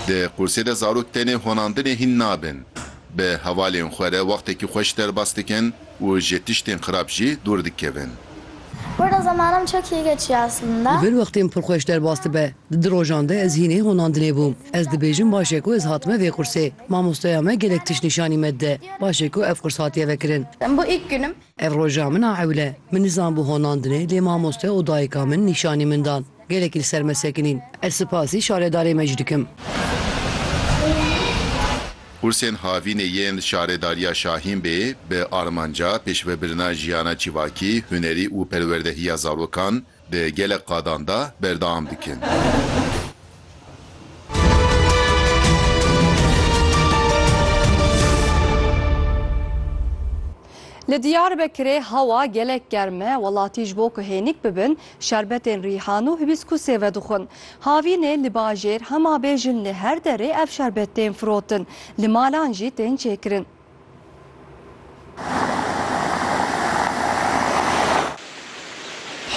Di qursê de zarok tenê honandinê hîn nabin. Bi hevalên xwe re wextekî xwe ji derbas dikin û ji tiştên xirab jî dûr dikevin. Li vir wextên pir xwe ji derbas dibe. Di du rojan de ez hînê honandinê bûm. Ez dibêjim baş e ku ez hatime vê qursê. Mamosteya me gelek tişt nîşanî me dide. Baş e ku ev qurs hatiye vekirin. Ev roja min a ewle. Min nizanbû honandine lê mamoste û dayika min nîşanî min dan. Gelekî li ser me sekinîn. Ez sipasî şaredarê me jî dikim. Qursên havînê yên Şaredariya Şahînbê bi armanca pêşvebirina jiyana civakî, hunerî û perwerdehiya zarokan, Di gelek qadan de berdewam dikin. Li Diyarbekirê hewa gelek germ e, welatî ji bo ku hênik bibin şerbetên rîhan û hibîskûsê vedixwin. Havînê li bajêr hema bêjin li her derê ev şerbet tên firotin, li malan jî tên çêkirin.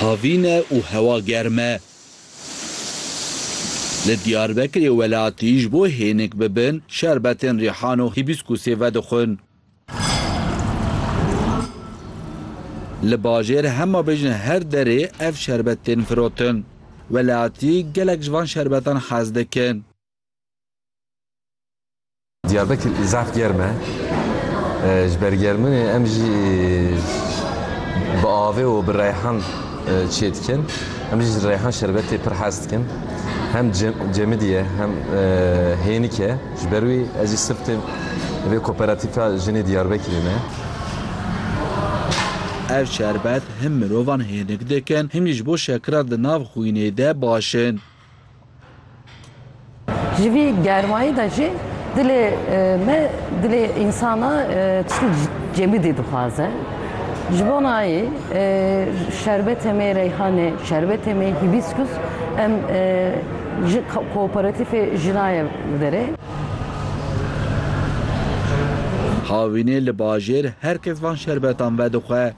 Havîn e û hewa germ e. Li Diyarbekirê welatî ji bo hênik bibin şerbetên rîhan û hîbîskûsê vedixwin. Li bajêr hema bêjin her derê ev şerbet tên firotin. Welatî gelek ji van şerbetan hez dikin. Diyarbekir zaf germ e. Ji ber germinê em jî bi avê û bi reyhan çê dikin. Em jî ji reyhan şerbetê pir hez dikin. Hem cemidî ye hem hênik e. Ji ber wî ez jî sifte vê koperatîfa jinê Diyarbekirê me. Ev şerbet him mirovan hênik dikin him jî ji bo şekira di nav xwînê de baş in. Ji vî germayî de jî dilê me, dilê însana çil cemidî dixwaze. Ji bo nayê şerbetê me reyhanê, şerbetê me hîbîskus em ji kooperatîfê jina ye verê. Havînê li bajêr her kes van şerbetan vedixwe.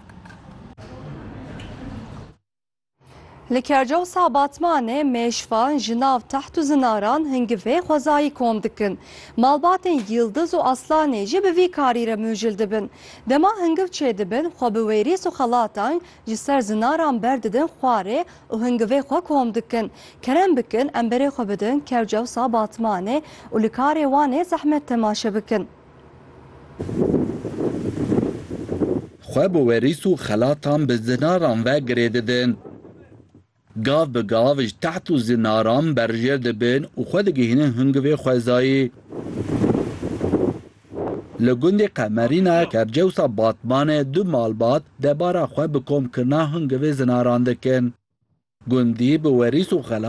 Li Kercawsa Batmanê mêşvan, jinav, teht û zinaran hingivê xwezayî kom dikin. Malbatên Yildiz û Aslanê jî bi vî karî re mûcil dibin. Dema hingiv çêdibin, xwe bi wêrîs û xelatang ji ser zinaran berdidin xwarê û hingivê xwe kom dikin. Kerem bikin em berê xwe bidin Kercawsa Batmanê û li karê wan ê zehmet temaşe bikin. Xwe bi werîs û xelatan bi zinaran ve girê didin. Gav bi gav ji teht û zinaran berjêr dibin û xwe digihînin hingivê xwezayî. Li gundê Qemerîna Kercewsa Batmanê du malbat debara xwe bi komkirina hingivê zinaran dikin. Gundî bi werîs û xelat